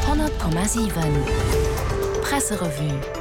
100,7 Presserevue.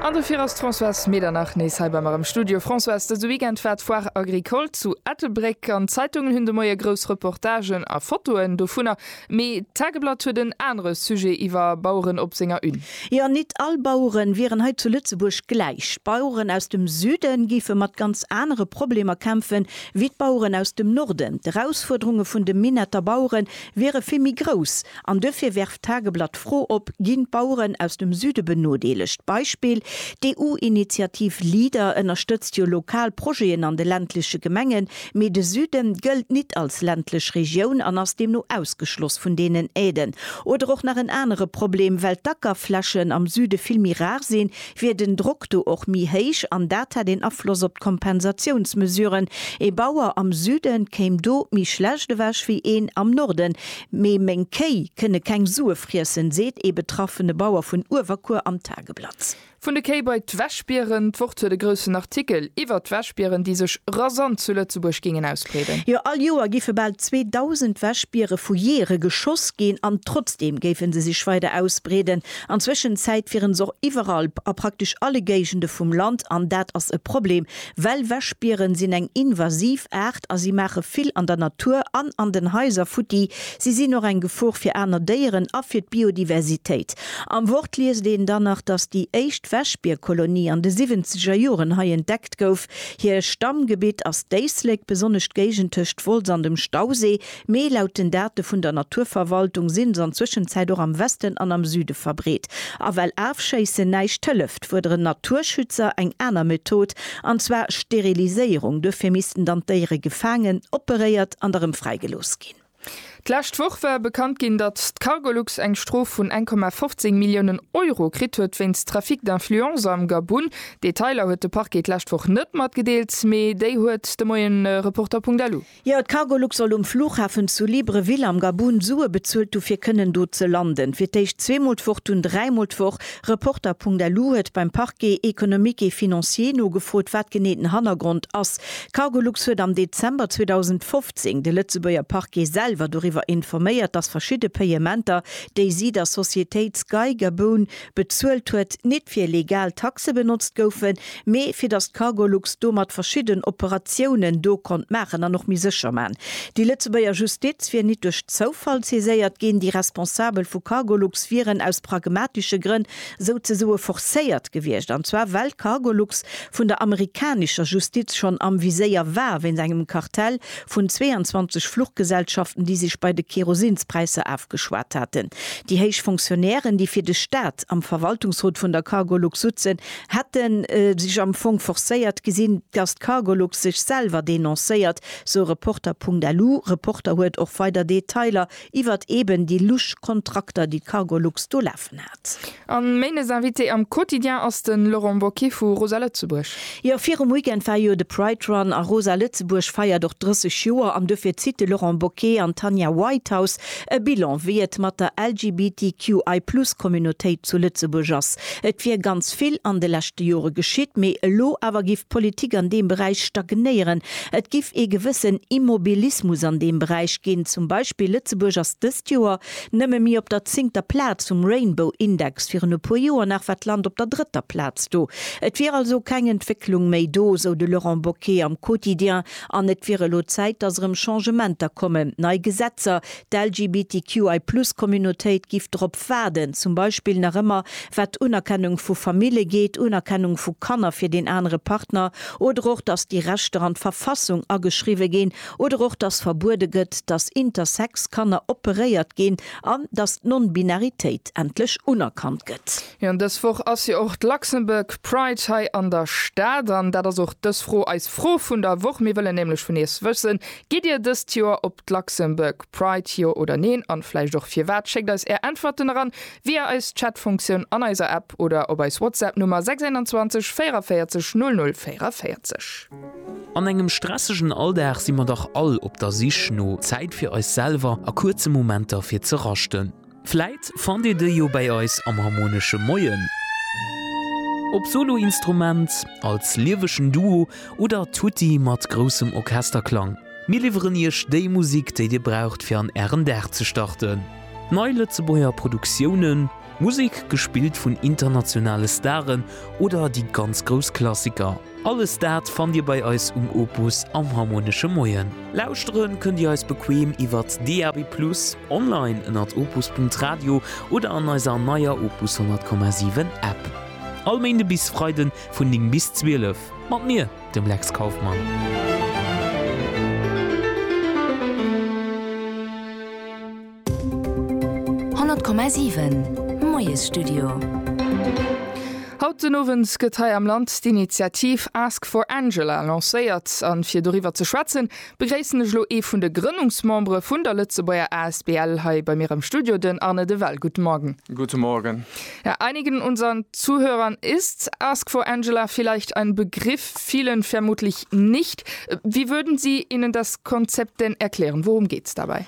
An dofir ass d'Françoise Medernach nees hei bei mer am Studio. Françoise, dëse Weekend war d'Foire Agricole zu Ettelbréck an d'Zeitungen hunn de Moie grouss Reportagen a Fotoen dovunner. Mee d'Tageblatt huet en anere Sujet iwwer Baueren op senger Une. Jo, nit all Baueren wieren hei zu Lëtzebuerg gläich. D'Baueren aus dem Süden géife mat ganz anere Problemer kämpfen, wéi d'Baueren aus dem Norden. D'Erausfuerderunge vun de Minetter Baueren wiere vill méi grouss an duerfir werft d'Tageblatt d'Fro op, Ginn d'Baueren aus dem Süde benodeelegt? Beispill, D'EU-Initiativ Leader ënnerstëtzt jo lokal Projeten an de ländleche Gemengen, mee de Süden gëllt nit als ländlech Regioun an ass deemno ausgeschloss vun deenen Aiden. Oder och nach en anere Problem, well d'Ackerflächen am Süde vill méi rar sinn, wier den Drock do och méi héich an dat hätt een Afloss op d'Kompensatiounsmesuren. Ee Bauer am Süde kéim do méi schlecht ewech wéi een am Norden. Mee meng Kéi kënne keng Sue friessen, seet ee betraffene Bauer vun Uewerkuer am Tageblatt. Vun de Kéi bei d'Wäschbieren, D'Wort huet e groussen Artikel iwwert d'Wäschbieren, déi sech rasant zu Lëtzebuerg géingen ausbreeden. Jo, all Joer géife bal 2.000 Wäschbiere vu Jeeëre geschoss ginn an trotzdeem géife se sech weider ausbreeden. An Zwëschenzäit wieren s'och iwwerall a praktesch alle Géigende vum Land an dat ass e Problem, well Wäschbieren sinn eng invasiv Aart a si maache vill an der Natur an an den Haiser futti. Si sinn och eng Gefor fir aner Déieren a fir d'Biodiversitéit. Am Wort liest een dann nach, dass déi éischt Wäschbierkolonie an de siwwenzeger Joren hei entdeckt gouf. Hir Stammgebitt ass d'Éislek, besonnesch d'Géigend tëscht Wolz an dem Stauséi. Mee laut den Date vun der Naturverwaltung sinn se an Zwëschenzäit och am Westen an am Süde verbreet. A well Afschéissen näischt hëlleft, fuerderen d'Naturschützer eng aner Method, an zwar Steriliséierung. Duerfir missten dann d'Déiere gefaangen, operéiert an da rëm fräigelooss ginn. D'lescht Woch war bekannt ginn, datt d'Cargolux eng Strof vun eng Komma 15 Milliounen Euro kritt huet wéinst Trafic d'influence am Gabun. Detailer huet de Parquet d'lescht Woch net matgedeelt, mee déi huet de Moien Reporter.lu. Jo, d'Cargolux soll um Flughafen zu Libreville am Gabun Sue bezuelt hu fir kënnen do ze landen. Fir d'éischt zweemol d'Woch, dunn dräimol d'Woch. Reporter.lu huet beim Parquet économique et financier nogefrot, wat genee den Hannergrond ass. Cargolux huet am Dezember 2015 de Lëtzebuerger Parquet selwer doriwwer informéiert, datt verschidde Payementer, déi si der Societéit Sky Gabun, bezuelt huet, nit fir legal Taxe benotzt goufen, mee fir dass d'Cargolux domat verschidden Operatiounen do konnt maachen an och méi sécher man. Déi Lëtzebuerger Justiz wier nit duerch Zoufall saiséiert ginn, déi Responsabel vu Cargolux wieren aus pragmatische Grënn souzesoe forcéiert gewiescht, an zwar well Cargolux vun der amerikanischer Justiz schonn am Viséier war wéinst engem Kartell vun 22 Fluchgesellschaften, déi sech bei de Kerosinspräisser afgeschwat haten. Déi héich Fonctionnairen, déi fir de Staat am Verwaltungsrot vun der Cargolux sutzen, hätte sech am Fong forcéiert gesinn, datt d'Cargolux sech selwer denoncéiert, sou Reporter.lu. Reporter huet och weider Detailer Iwwert eben déi lusch Kontrakter, déi d'Cargolux do lafen hat. An méines Invité am Quotidien ass den Laurent Bocquet vu Rosa Lëtzebuerg. Jo, virum Weekend war jo de Pride Run a Rosa Lëtzebuerg feiert och 30 Joer an duerfir zitt de Laurent Bocquet an d'Tanja Whitehouse e Bilan, wéi et mat der LGBTQI Plus Communautéit zu Lëtzebuerg ass. Et wier ganz vill an de leschte Jore geschitt, mee elo awer giff d'Politik an deem Beräich stagnéieren, Et giff ee gewëssen Immobilismus an deem Beräich ginn. Zum Beispill Lëtzebuerg ass dëst Joer nëmme mi op der zingter Plaz vum Rainbow Index, virun e puer Joer nach war d'Land op der drëtter Plaz do. Et wier also keng Entwécklung méi do, sou de Laurent Boquet am Quotidien, an et wier elo Zäit, datt erëm Changementer kommen, nei Gesetzer, D'LGBTQI-Plus-Communautéit giff drop waarden, zum Beispill nach ëmmer wat d'Unerkennung vu Famille geet, Unerkennung vu Kanner fir deen anere Partner oder och dass déi Rechter an d'Verfassung ageschriwwe ginn oder och dass verbuede gëtt, dass intersex Kanner operéiert ginn an dass d'Nonbinaritéit endlech unerkannt gëtt. Jo an dës Woch ass jo och d'Luxembourg Pride hei an der Stad an dat ass och dës Fro eis Fro vun der Woch. Mir wëllen nämlech vun iech wëssen, gitt dir dëst Joer op d'Luxembourg Pride, jo oder neen an vläicht och firwat? Schéckt eis är Äntwerten eran via eis Chatfunktioun an eiser App oder op eis Whatsapp Nummer 621 44 00 44. An engem stressegen Alldag si mer dach all op der Sich no Zäit fir eis selwer a kuerze Momenter fir ze raschten. Vläit fannt Dir déi jo bäi eis am Harmonesche Moien. Ob Soloinstrument, als liewegen Duo oder tutti mat groussem Orchesterklang, mir liwweren Iech déi Musik, déi Dir braucht fir an Ären Dag ze starten. Nei Lëtzebuerger Produktiounen, Musek gespillt vun internationale Staren oder déi ganz grouss Klassiker. Alles dat fannt Dir bei eis um Opus am Harmonesche Moien. Lauschteren kënnt Dir eis bequem iwwert DAB+, online ënnert opus.radio oder an eiser neier Opus 100,7 App. All Méinde bis Freide vun 9 bis 12 mat mir, dem Lex Kauffmann. 100,7 Moiesstudio Haut den Owend gëtt hei am Land d'Initiativ Ask for Angela lancéiert. A fir doriwwer ze schwätzen, begréissen ech elo ee vun de Grënnungsmembere vun der Lëtzebuerger Asbl hei bei mir am Studio, den Arne de Well. Guten Morgen. Guten Morgen. Ja, einigen unseren Zuhörern ist Ask for Angela vielleicht ein Begriff, vielen vermutlich nicht. Wie würden Sie ihnen das Konzept denn erklären? Worum geht's dabei?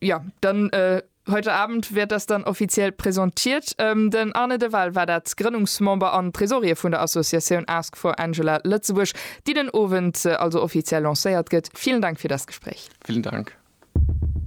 Ja, dann äh, heute Abend wird das dann offiziell präsentiert. Ähm, den Arne de Waal war dat Grënnungsmember an Tresorier vun der Associatioun Ask for Angela Lëtzebuerg, déi den Owend äh, also offiziell lancéiert gëtt. Vielen Dank fir das Gespräch. Vielen Dank.